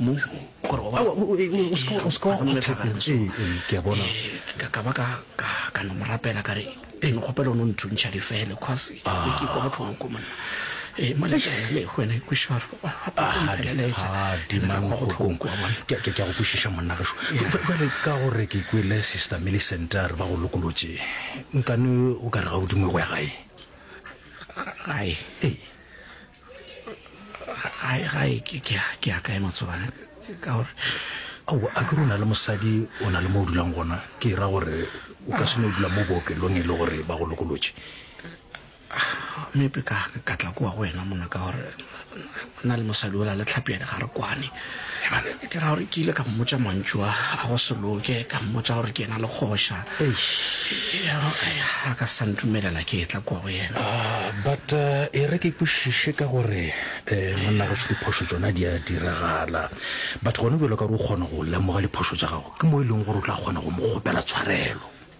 mo gore o seke wa go thagana so ke a bona ka ba ka no morapela ka re e ne kgopela o no nthuntšha difele cause ke kwa botlhoko ko monna ee malele wena e kwešwaro ke go kwešiša monna geso jale ka gore ke kwele sister millicent a re ba go lokolotše nkane o ka re ga o dingwe go ya gae gae ee gae ke a kae matsobane ka gore aowa a ke rona le mosadi o na le mo o dulang gona ke ra gore o ka seno dula mo bookelong e le gore ba go lokolotše mepe ka ka tla kwa go wena mona ka gore na le mosadi ola le tlhapi ya dikgare kwane ke ra gore ke ile ka mmotsa mantšu a a go se loke ka mmotsa gore ke ena le kgoša a ka sa ntumelela ke etla kua go yena ah, but eh, e re ke kwešiše ka gore um monna gaso diphošo tsona di a diragala but gone bjalo ka gore o kgona go lemoga diphošo tsa gago ke mo e leng gore o tla kgona go mo kgopela tshwarelo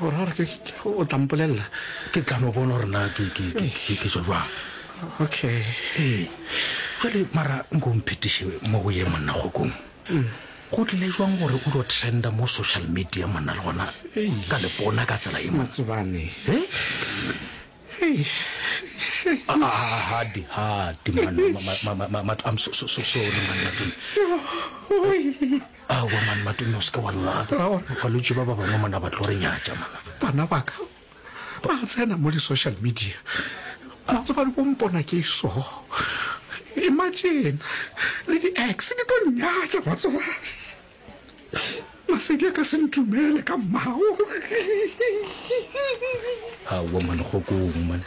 Gore ke o tla mpolelela. Ke tla no bona gore na ke ke ke ke ke tswa jwang. Okay. Ee. Jwale mara nko mphetiše mo go ye monna kgokong. Go tlile jwang gore o tlo trenda mo social media monna le gona ka lepona ka tsela e Matsebane. He? Hey. Hadi hadi man. I'm so so so sorry man. aowa mane matume o seke wa lla balwetse ba ba bangwe mona ba tlo re nyatša mana bana baka ba tsena mo di-social media ba tseba le bompona ke so imagine le di-ex di tlo nyatša batsoba masedi a ka se ntumele ka mmao aowa mane go kong mane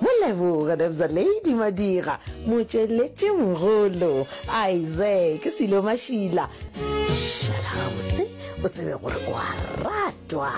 Go leboga Nebza Lady Madiga, motšweletši mogolo, Isaac Silo Mashila. Šala gabotse o tsebe gore o a ratwa.